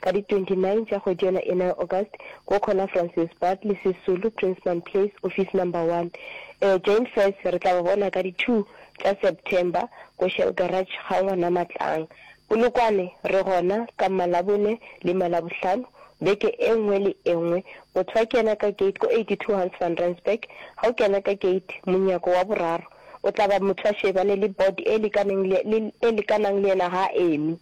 ka di 29 tša kgwedi yona ena ya August, ko khona Francis Bartley, Sisulu, Prinsman Place, office number 1. E, Jane Fess, re tla ba bona ka di 2 tša September ko Shell Garage ga Ngwanamatlang. Polokwane, re gona ka Mmalabone le Mmalabohlano, beke e nngwe le e nngwe. Motho a kena ka gate ko 82 Hans Van Rensburg, ga o kena ka gate, monyako wa boraro, o tla ba motho a šebane le board e lekaneng le, le, e lekanang le yena ga a eme.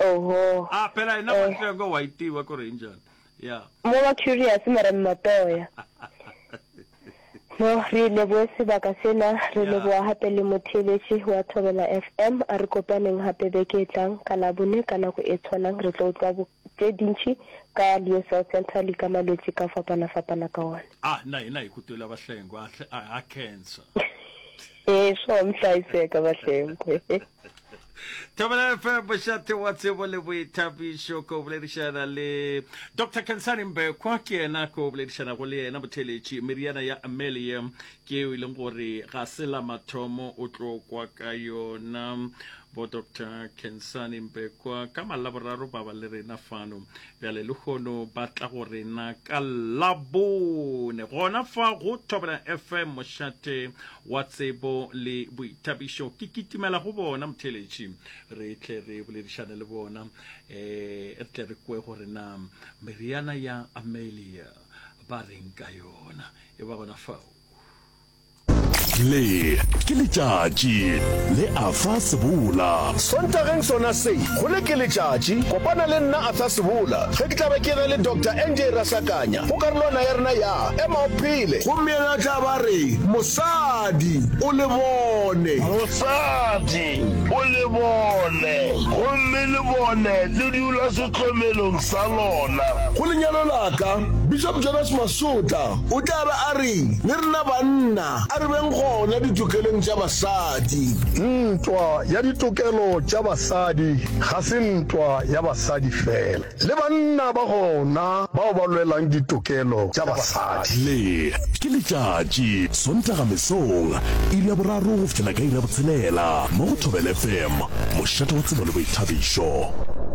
Oho. Ah, phela yena Eh. Matoya ko White wa ko Rangers. Yeah. Mo ba curious mara Mmatoya. No, re leboe sebaka sena, re Yeah. leboa hape le motheeletši wa Thobela FM. A re kopaneng hape beke e tlang ka Labone ka nako e tshwanang. Re tlo utlwa bo- tše dintši ka Leo South Central le ka malwetši ka fapana-fapana ka ona. Ah, na yena ikutwela bahlengwe a hle- a a cancer. Ee, sure, mhlaiseka Bahlenkwe. Thobela FM mošate wa tsebo le boithabišo ko boledišana le Dr Kensani Mbekwa ke yena ko boledišanago le yena motheletši meriana ya Amelia ke eo e leng gore ga se la mathomo o tlo kwa ka yona bo Dr Kensani Mbekwa ka malaboraro ba ba le rena fano Bjale lehono ba tla go rena ka Labone, gona fa go Thobelang FM, mošate wa tsebo le boithabišo. Ke kitimela go bona, motheeletši, re tle re boledišane le bona, e re tle re kwe gore na meriana ya Amelia ba reng ka yona. E ba gona fao. Le ke letšatši le Arthur Sebola. Sontageng sona se, go Le ke letšatši, kopana le nna Arthur Sebola ge ke tla be ke ge le Doctor NJ Rasakanya go karolwana ya rena ya Ema o Phele. Gomme yena a tla ba a re, Mosadi, o le bone. Mosadi, o le bone. Gomme le bone le dula sehlomelong sa lona. Go lenyalo la ka, Bishop Jonas Masotla. O tla be a re, Le rena banna, a re beng gona ditokelong tša basadi. Ntwa ya ditokelo tša basadi ga se ntwa ya basadi feela. Le banna ba gona bao ba lwelang ditokelo tša basadi. Le, ke letšatši, Sontaga mesong, iri ya boraro go fihlela ka iri ya botshelela, mo go Thobela FM, mošate wa tsebo le boithabišo.